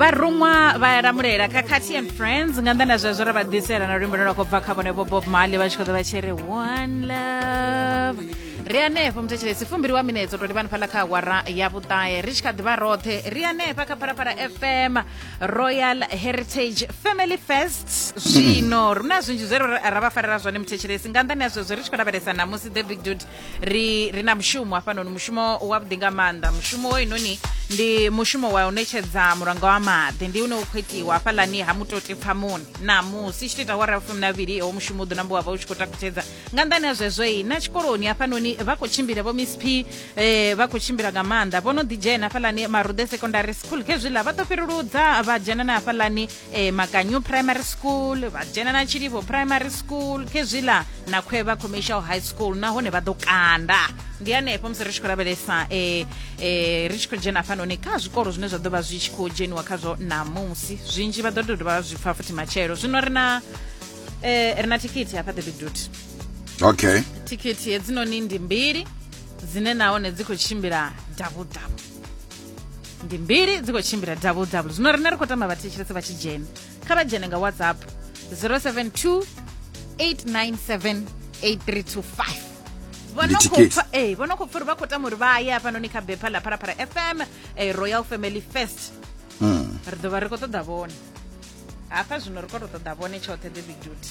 vharuṅwa vha lamulela khakhathi and friends nga nḓa na zwezwo ra vha ḓisela na luimbo lwa khou bva kha vhone vho bob mali vha tshi khou ḓo vha tshi ri one love ri anefho muthetshelesi fumbiri wa minetso to livhani fhaḽa kha awara ya vhuṱahe ri tshi kha ḓivha roṱhe ri anefha kha phalaphala fm royal heritage family fest zwino ri na zwinzhi zwe ra vha farela zwone muthetshelesi nga nḓani ya zwezwo ri tshi khou lavhelesa namusi the big dude ri ri na mushumo hafhanoni mushumo wavhuḓi nga maanḓa mushumo wo inoni ndi mushumo wa u ṋetshedza mulanga wa maḓi ndi une u khou itiwa hafhalani ha mutoti pfamoni namusi tshi to ita wara fumi na vhili ho mushumo u ḓo nambo wa vha u tshi khou takutshedza nga nḓani ha zwezwo i na tshikoloni hafhanoni vha khou tshimbila vho miss p eh, vha khou tshimbila nga maanḓa vho no ḓidzhena hafhalani marude secondary school khezwiḽa vha ḓo fhiruludza vha dzhena na hafhalani e, makanyo primary school vha dzhena na tshilivho primary school khezwila na khwevha commercial high school nahone vha ḓo kanda ndi hanefho musi ri tshi khou lavhelesa e, e, ri tshi khou dzhena hafhanoni kha zwikolo zwine zwa ḓo vha zwi tshi khou dzheniwa khazwo ṋamusi zwinzhi vha ḓo tou dovha zwi pfa futhi matshelo zwino ri na e, ri na thikhithi hafha the big dut okay thikhithi hedzinoni ndi mbili dzine nahone dzi khou tshimbila davhudavhu ndi mbiri dzi khou tshimbila double double zwino rine ri khou tamba vhathetshelesi vha tshi dzhena kha vha dzhene nga whatsapp 072 897 8325 Ndi thikhedzo. ee vho no khou pfa uri vha khou tama uri vha ye hafhanoni kha bepha ḽa pharapara fm eh, royal family first Mm. ri ḓo vha ri khou ṱoḓa vhone hafha zwino ri khou tou ṱoḓa vhone tshoṱhe the big duty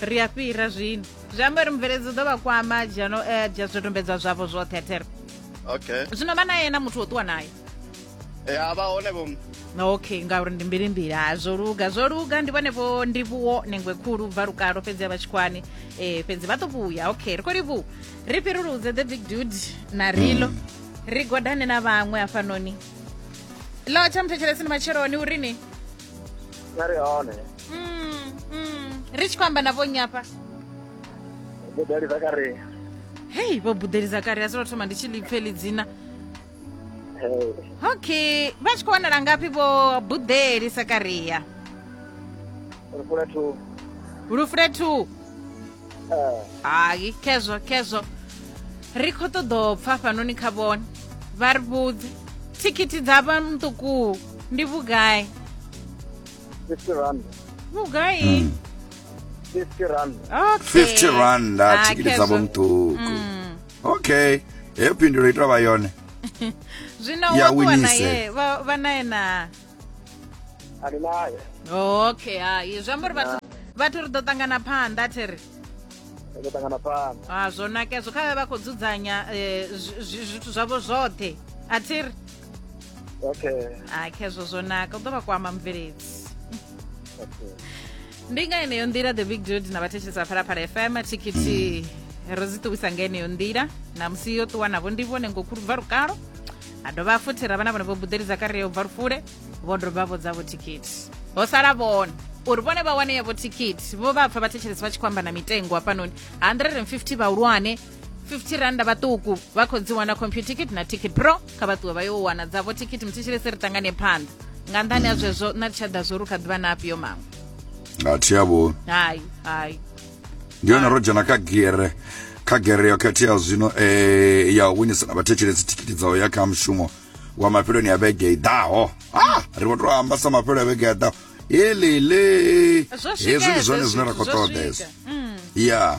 ri a fhira zwino zwi amba uri mubveledzi u ḓo vha kwama dzhano eh, dzhia zwidodombedzwa zwavho zwoṱhe there okay zwino vha naye na muthu wo ṱuwa naye e a vha hone vho okay ngauri ndi mbilimbili ha zwo luga zwo luga ndi vhone vho ndivhuwo nengwe khulu bva lukalo fhedzi a vha tshikwani um fhedzi vha ḓo vhuya okay ri khou livhuwa ri fhiruludze the big dude na rilo ri godane na vhaṅwe hafhanoni lo tsha muthetshelesini matsheloni uri ni nga ri hone Mm, mm. ri tshi khou amba na vhonnyi hafha vhudali dza kare hei vho buḓeli zakari a solo thoma ndi tshi lipfe ḽi dzina okay vha tshi khou wanala ngafhi vho buḓeli sakaria ri fula thu lufule two hai khezwo khezwo ri khou ṱoḓa u pfa fhanoni kha vhone vha ri vhudze thikhithi dza vha muṱuku ndi vhugai fifty rand vhugai hmm. fifty rand fifty rand ah, thikhithi dza vha muṱuku hmm. okay heyo phindulo itwa vha yone zwino wa ṱuwa naye vha naye na ani nayo okay hai zwi amba uri vhathu vhathu ri ḓo ṱangana phanḓa thi ri ri ḓo ṱangana phanḓa a ah, zwo nakezwo kha vhe vha khou dzudzanya eh, zwithu zwavho zwoṱhe a thi ri okay a ah, khezwo zwo naka u ḓo vha kwama mubveledzi okay ndi nga yeneyo nḓila the big dude na vhathetshelesi vha phalaphala fm thikhithi ro dzi ṱuwisa nga yeneyo nḓila na musi yo ṱuwa navho ndi vhone ngokhulu bva lukalo a dovha futhi ra vha na vhone vho buḓelidza kare yo bva lufule vho dovha vho dzavho thikhithi ho sala vhone uri vhone vha wane yavho thikhithi vho vha pfa vhathetshelesi vha tshi khou amba na mitengo hafhanoni 150 vhahulwane 50 randa vhaṱuku vha khou dzi wana computer ticket na ticket pro kha vha ṱuwe vha yo wana dzavho ticket muthetshelese ri tangane phanḓa nga nṱhani ha zwezwo na ri tsha ḓa zwo ri kha ḓivha na afhio maṅwe a thi yavho hayi hayi ndi yone ro dzhena kha gere kha gere yo khetheaho zwino eh, ya u winisa na vhathetshelesi thikiti dza u ya kha mushumo wa mafheloni ya vhege i ḓaho ah, ri vho to amba sa mafhelo ya vhege ya ḓaho elele Zwo swika hezwi ndi hezwo zwone zwine ra khou zwithu, zwo ṱoḓa swika. hezwo ya